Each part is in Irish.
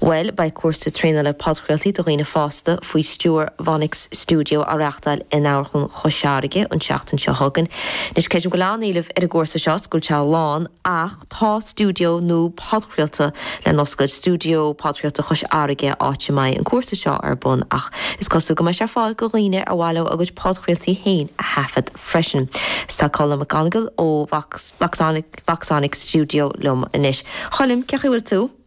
Bhuel, beidh cúrsa traenála podchraoltaí do dhaoine fásta faoi stiúir Voxonic Studio á reáchtáil in Amharclann Chois Fharraige an tseachtain seo chugainn. Anois, creidim go bhfuil an-éileamh ar an gcúrsa seo, is go bhfuil sé lán, ach tá stiúideo nua podchraolta le n-oscailt, Stiúideo Podchraolta Chois Fharraige, áit a mbeidh an cúrsa seo ar bun, ach is cosúil go mbeidh sé ar fáil go dhaoine ar mhaith leo a gcuid podchraoltaí féin a thaifead freisin. Is tá Colm McGonigle ó Voxonic Studio liom anois. Choilm, cé chaoi bhfuil tú?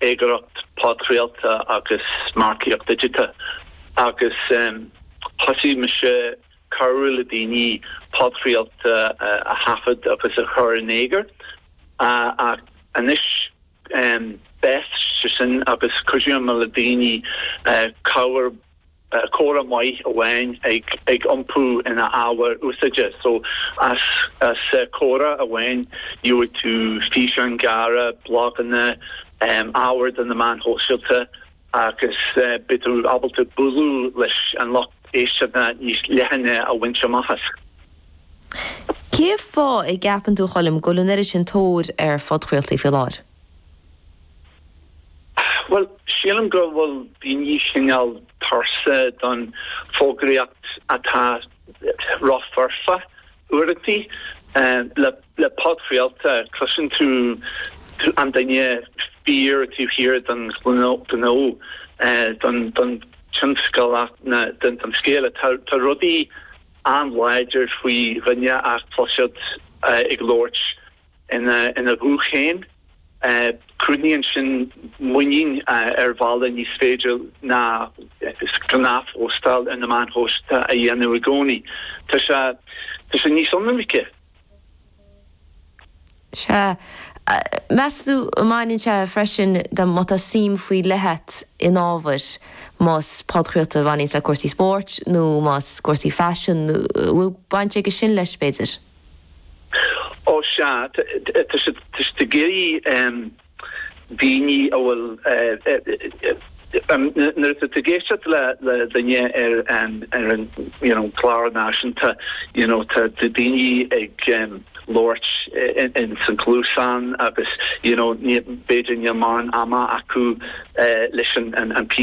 Eagraíocht podchraolta agus margaíocht dhigiteach agus thosaigh mise cabhrú le daoine podchraoltaí a thaifead agus a chur in eagar ach anois d'fhás sin agus cuidíonn muid le daoine cabhair comhrá maith amháin ag iompú ina ábhar úsáideach so as comhrá amháin gheobhaidh tú físeáin ghearra, bloganna, ábhar do na meáin shóisialta agus beidh tú ábalta b'fhéidir lucht éisteachta níos leithne a bhaint amach as. Cén fáth a gceapann tú, Choilm, go bhfuil an oiread sin tóir ar phodchraoltaí faoi láthair? Bhuel, sílim go bhfuil daoine cineál tuirseach den fhógraíocht atá rófhoirfe uaireantaí. Le podchraoladh, cloiseann tú an duine fíor taobh thiar den ghnó, den tionscal, den scéal. Tá rud éigin an-láidir faoi dhuine a chloisteáil ag labhairt. ina ghuth féin. Cruthaíonn sin muinín ar bhealach nach féidir le gnáthphóstáil ar na meáin shóisialta a dhéanamh i gcónaí. Tá sé níos ionraice. Sea. Meas tú an mbaineann sé freisin le má tá suim faoi leith a't in ábhar, más podchraoladh a bhaineanns le cúrsaí spóirt nó más cúrsaí faisin, an bhfuil baint aige sin leis, b'fhéidir? Ó sea, tá siad ag iarraidh daoine a bhfuil, nuair atá tú ag éisteacht le duine ar an gclár náisiúnta, you know, tá daoine ag labhairt in san gcluasán agus, you know, b'fhéidir níl mórán ama acu leis an